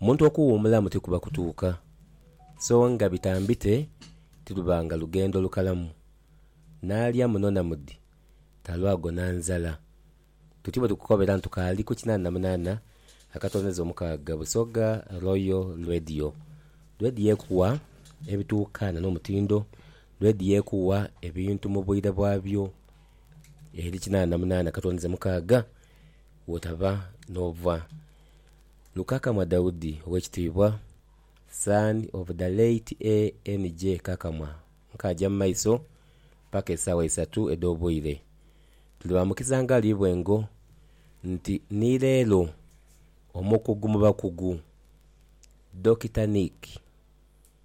Omuntu okuwuumulamu tikuba kutuuka, so nga bitambite tirubanga lugendo lukalamu. N'alya muno na mudi, talwagona nzala. Tuti bwe tukukobera ntu kaali ku kinaana na munaana akatondeza omukaaga Busoga Royal Radio. Radio ekuwa ebituukaana n'omutindo, radio ekuwa ebintu mu bwire bwabyo eri kinaana na munaana akatondeza mukaaga. Wotaba n'obwa Lukakamwa Daudi ow'ekitiibwa, son of the late ANJ Kakamwa, nkaaja mu maiso paka esaawa isatu edh'obwire. Tuli ba mukiza ngali bwengo nti ni leero omukugu mu bakugu, Dokita Nick,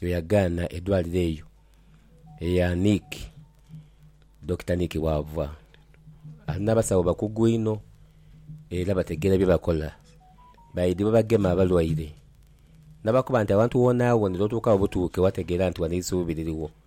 Yo yagaana edwaliro eyo eya Nick, Dokita Nick Wavwa, ali n'abasawo bakugu inho era bategeera bye bakola. Baidhi bwe bagema abalwaire, n'abakoba nti awantu woonawoona otuuka obutuuke wategeera nti wano eisuubi lirigho.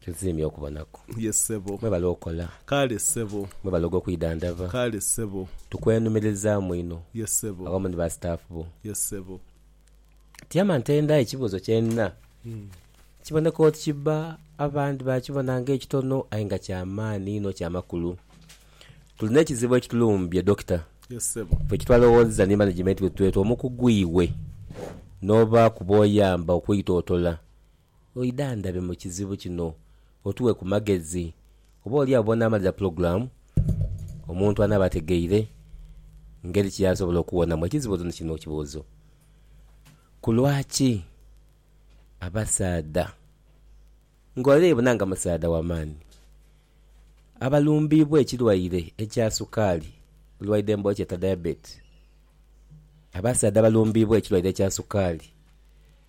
Tusiimye okubonaku. Ye ssebo. Mwebale okola. Kale ssebo. Mwebale ogw'okwidhandhaba. Kale ssebo. Tukwenhumiririzaamu inho. Ye ssebo. Awamu ni ba staff bo. Ye ssebo. Tiama ntenda ekibuuzo kye nina. Kiboneka oti kibba abandi baakibona ng'ekitono aye nga kya maani inho kya makulu. Tulina ekizibu ekitulumbye Dokita. Ye ssebo. Ffe kyetwalowoozezza ni management wethu oti omukugu iwe n'oba kuba oyamba okwitootola Oidhandhabe mu kizibu kino otuwe ku magezi. Oba oli agho bw'onaamalira pulogulaamu, omuntu anaaba ategeire ngeri ki y'asobola okuwonamu ekizibu ni kino kibuuzo, Ku lwaki abasaadha, ng'ole yebuna nga musaadha wa maani, abalumbiibwa ekirwaire ekya sukaali, olwaidha emboola kyeeta diabetes, abasaadha abalumbiibwa ekirwaire ekya sukaali,